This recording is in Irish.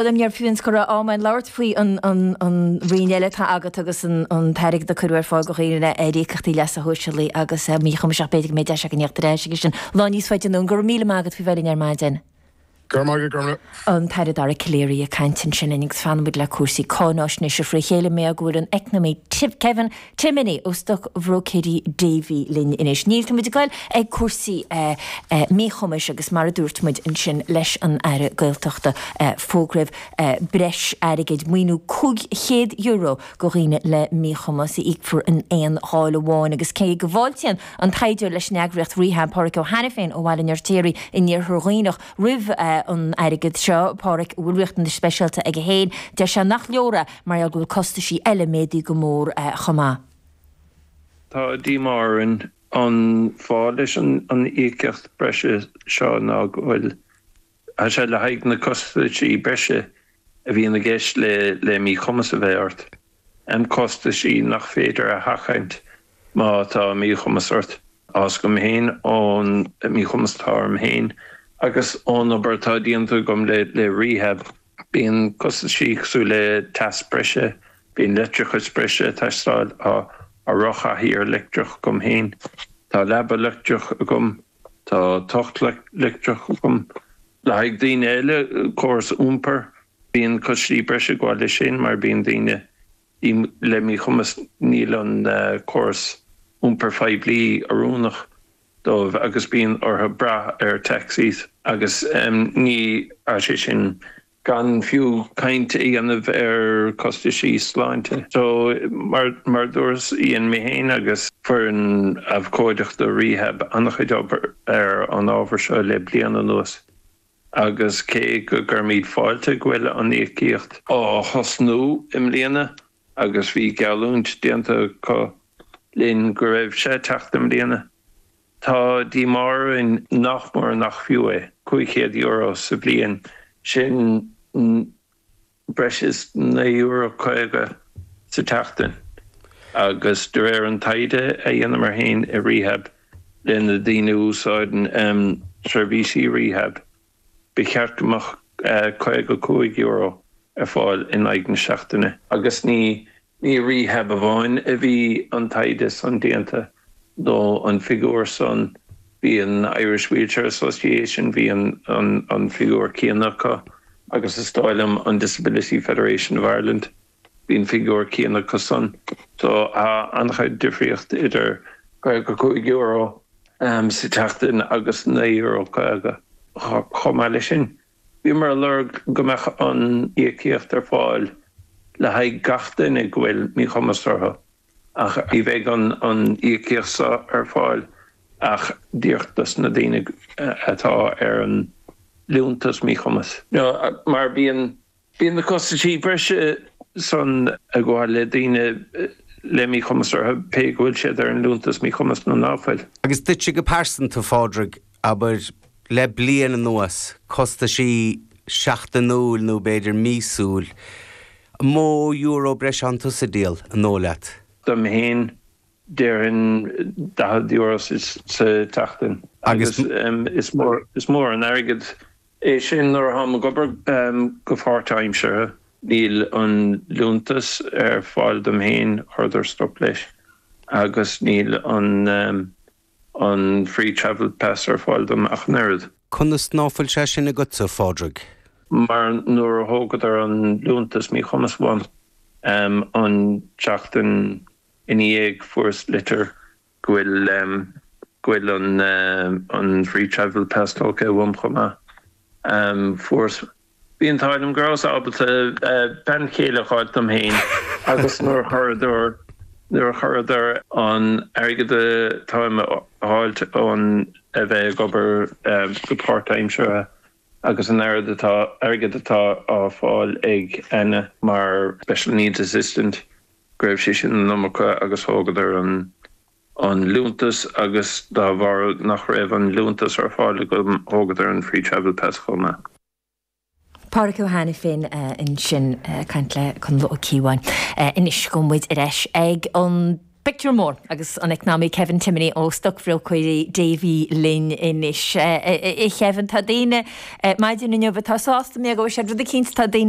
Ní raibh fiú an scaitheamh ama againn labhairt faoi an roinn eile atá agat agus an t-airgead a cuireadh ar fáil do dhaoine le híocaíochtaí leasa shóisialaigh agus míchumais ach. B'fhéidir go mbeidh deis againn díriú isteach air sin lá níos faide anonn. Go raibh míle maith agat faoi bheith linn ar maidin. Go raibh maith agat. An tAire Dara Calleary ag caint ansin linn agus fanann muid le cúrsaí cáinfháisnéise fré chéile. Meastar go bhfuil an eacnamaí Kevin Timoney ó Stoc Bhróicéirí Davy linn anois. Níl, tá muid ag goil ag cúrsaí míchumais agus mar a dúirt muid ansin leis an Aire Gaeltachta, fógraíodh breis airgid, maoiniú €500 do dhaoine le míchumas a íocfar in aon gheábh amháin agus cé go bhfáiltíonn an taighdeoir leis an eagraíocht Rehab, Pádraig Ó hAiniféin ó Bhaile an Fheirtéaraigh in Iarthar Dhuibhneach, roimh an airgead seo, Pádraig, a bhfuil riachtanais speisialta aige féin, deir sé nach leor é. mar gheall go bhfuil costaisí eile méadaí go mór chomh maith. Tá díomá orainn an fáth leis an íocaíocht breise seo ná go bhfuil sé le haghaidh na costaisí breise a bhíonn i gceist le míchumas a bheith ort, costaisí nach féidir a sheachaint má tá míchumas ort. Fhios agam féin ón míchumas atá orm féin agus ón obair atá déanta agam le Rehab. Bíonn costaisí cosúil le teas breise, bíonn leictreachas breise ag teastáil, tá rothchathaoir leictreach agam féin, tá leaba leictreach agam, tá tocht leictreach agam. Le haghaidh daoine eile, córas iompair, bíonn costaisí breise ag gabháil leis sin mar bíonn daoine le míchumas, níl an córas iompair phoiblí oiriúnach. dóibh agus bíonn orthu brath ar taxis agus ní, tá sé sin gan fiú caint a dhéanamh ar costaisí sláinte. So, mar a dúras, dhein mé féin agus foireann abhcóideachta Rehab an-chuid obair ar an ábhar seo le bliain anuas agus cé go gcuirimid fáilte go bhfuil an íocaíocht á thosnú i mbliana, agus bhí geallúint déanta acu linn go raibh sé ag teacht i mbliana. Tá díomá orainn nach mór nach fiú é, €500 sa bhliain, sin breis is €9 50 sa tseachtain agus de réir an taighde a dhéanamar féin i Rehab leis na daoine a úsáideann seirbhísí Rehab, Ba cheart go mbeadh €55 ar fáil in aghaidh na seachtaine. Agus ní i Rehab amháin a bhí an taighde san déanta, nó an figiúr san. Bhí an Irish Wheelchair Association, bhí an figiúr céanna acu agus is dóigh liom an Disability Federation of Ireland. Bhí an figiúr céanna. Agus ansan, so tá an-chuid difríocht idir €55 sa tseachtain agus €9.50. Chomh maith leis sin, bhíomar ag lorg go mbeadh an íocaíocht ar fáil le haghaidh gach duine go bhfuil míchumas orthu ach ní bheidh an íocaíocht seo ar fáil ach díreach dos na daoine atá ar an liúntas míchumais. Mar bíonn Bíonn na costaisí breise san ag gabháil le daoine le míchumas orthu pé go bhfuil siad ar an Liúntas Míchumais nó ná fuil. Agus duitse go pearsanta, a Phádraig, abair, le bliain anuas, costaisí seachtainiúil nó b'fhéidir míosúil, an mó euro breise atánn tusa ag díol an dóigh leat? Dom fhéin, déarfainn daichead euro sa tseachtain. Agus is mór an airgead. é sin nuair atáim ag obair go páirtaimseartha. Níl an liúntas ar fáil dom féin, chuireadar stop leis, agus níl an free travel pass ar fáil dom ach an oiread. Conas ná fuil sé sin agatsa, a Phádraig? Mar nuair a thógadar an liúntas míchumais uaim an tseachtain ina dhiaidh fuaireas litir go bhfuil an Free Travel Pass tógtha uaim chomh maith. Fuaireas. Bhí an t-ádh liom go rabhas ábalta bean chéile a fháilt dom féin agus nuair a chuireadar an airgead atáim ag fáilt ón a bheith ag obair go páirtaimseartha agus an airgead atá á fáil ag Anna mar Special Needs Assistant go raibh sé sin an iomarca agus thógadar an liúntas agus dá bharr nach raibh an liúntas ar fáil agam thógadar an Free Travel Pass chomh maith. Pádraig Ó hAiniféin ansin ag caint le Conall Ó Cíobháin. Anois gabhfaidh muid ar ais ag an bpictiúr mór agus an eacnamaí Kevin Timoney ó Stocbhróicéirí Davy linn anois. A Khevin, tá daoine maidin inniu atá sásta mar go bhfuair siad rud eicínt, tá daoine